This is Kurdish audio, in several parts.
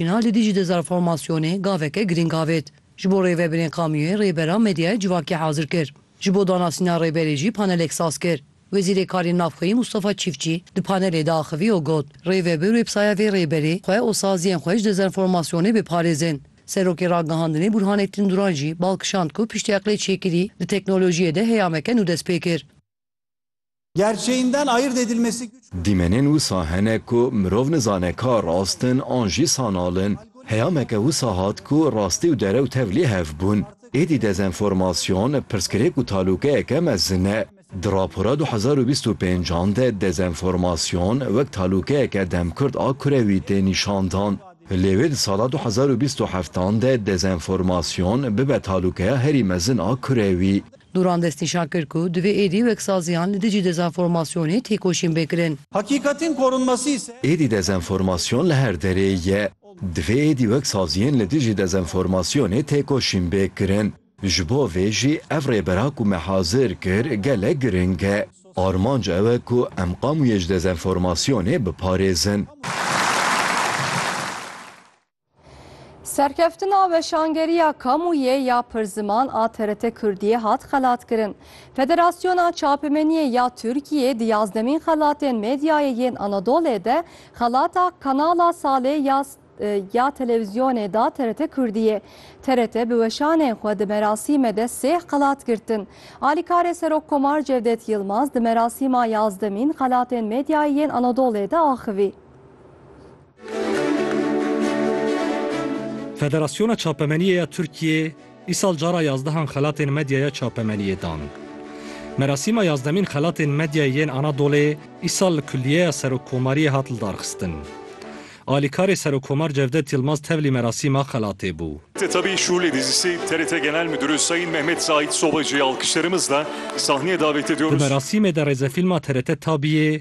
Îlhan li dijî dezanformasyonê gaveke girîng avêt. Ji bo rêvebirên kamûyê rêbera medyaya civakê hazir kir. Ji bo danasîna rêberê jî panelek saz kir. Wezîrê Karên Navxweyî Mustafa Çîfçî di panelê de axivî û got, Rêvebir websaya vê rêberê xwe û saziyên xwe ji dezanformasyonê biparêzin. Serokê Ragihandinê Burhanettin Duran jî bal kişand ku piştî eqlê çêkirî di teknolojiyê de heyameke nû dest pê kir. Gerçeğinden ayırt edilmesi güç bulunan. Dîmenên wisa hene ku mirov nizane ka rast in an jî sanal in. Heyameke wisa hat ku rastî û derew tev lê hev bûn. Êdî dezenformasyon pirsgirêk û talûkeyeke mezin e. Di rapora du hezar û bîst û pênc an de dezenformasyon wek talûkeyeke demkurt a kurewî tê nîşandan. Lê wê di sala du hezar û bîst û heft an de dezenformasyon bibe talûkeya herî mezin a kurewî. Duran destnîşan kir ku divê êdî wek saziyan li dijî dezenformasyonê têkoşîn bê kirin. Hakîkatên korunmasî ise. Êdî dezenformasyon li her derê ye. Divê êdî wek saziyên li dijî dezenformasyonê têkoşîn bê kirin. Ji bo vê jî ev rêbera ku me hazir kir gelek giring e. Armanc ew e ku em qamûyê ji dezenformasyonê biparêzin. Serkeftina weşangeriya kamûyê ya pirziman a TRT Kurdiyê hat xelatkirin. Federasyona Çapemeniyê ya Tirkiyê di yazdemîn xelatên medyayê yên Anadolê de xelata Kanala Salê ya ya televîzyonê da TRT Kurdiyê. TRT bi weşanên xwe di merasîme de sêh xelat girtin. Alîkarê Serokkomar Cevdet Yilmaz di merasîma yazdemîn xelatên medyayê yên Anadolê de axivî. Federasyona Çapemeniyê ya Tirkiyê îsal cara yazdehan xelatên medya ya çapemeniyê dan. Merasîma yazdemîn xelatên medyayê yên Anadolê îsal li Kulliyeya Serokkomariyê hat lidarxistin. Alîkarê Serokkomar Cevdet Yilmaz tevlî merasîma xelatê bû. Tetabî Şûlê Dizîsê TRT Genel Midûrê Sayîn Mehmet Zahît Sobacî alkişlerimizle sahneye davet ediyoruz. Di merasîmê de rêzefîlma TRT Tabîyê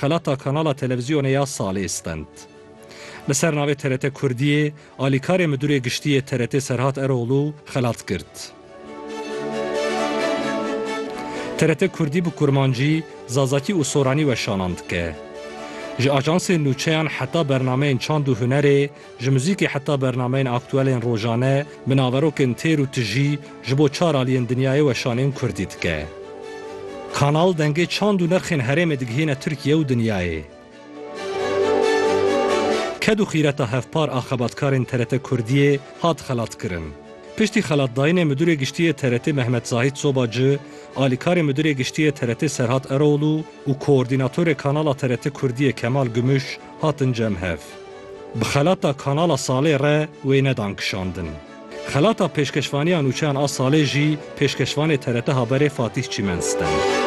Xelata kanala televîzyonê ya Salê stend. Li ser navê TRT Kurdiyê, alîkarê Midûrê Giştî yê TRT'ê Serhat Eroglû xelat girt. TRT Kurdî bi Kurmancî, Zazakî û Soranî weşanan dike. Ji ajansên nûçeyan heta bernameyên çand û hunerê, Ji muzîkê heta bernameyên aktuelên rojane, bi naverokên têr û tijî ji bo çar aliyên dinyayê weşanên kurdî dike. Kanal dengê çand û nirxên herêmê digihîne Tirkiye û dinyayê. Ked û xîreta hevpar a xebatkarên TRT Kurdiyê hat xelatkirin. Piştî xelatdayînê Midûrê Giştî yê TRT Mehmet Zahît Soba ci, alîkarê Midûrê Giştî yê TRT Serhat Eroğlu û koordînatorê kanala TRT Kurdiyê Kemal Gümüş, hatin cem hev. Bi xelata Kanala Salê re wê nedan kişandin. Xelata pêşkeşvaniya nûçeyan a Salê jî pêşkeşvanê TRT Haberê Fatîh Çîmen stend.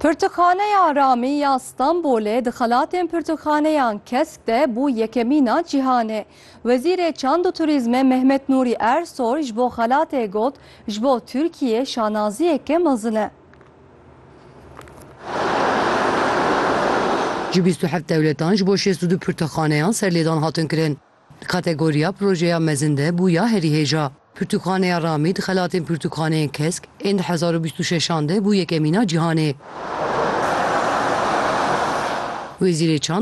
Pirtûkxaneya Ramî ya Stenbolê di xelatên pirtûkxaneyan kesk de bû yekemîn a cîhanê. Wezîrê Çand û Turîzmê Mehmet Nûrî Ersoy ji bo xelatê got, Ji bo Tirkiyê şanaziyeke mezin e. Ji bîst û heft dewletan ji bo şêst û du pirtûkxaneyan serlêdan hatin kirin. Di kategoriya projeya mezin de bû ya herî hêja. Pirtûkxaneya Ramî di xelatên pirtûkxaneyên kesk ên du hezar û bîst û şeş an de bû yekemîna cîhanê. Wezîrê Çand,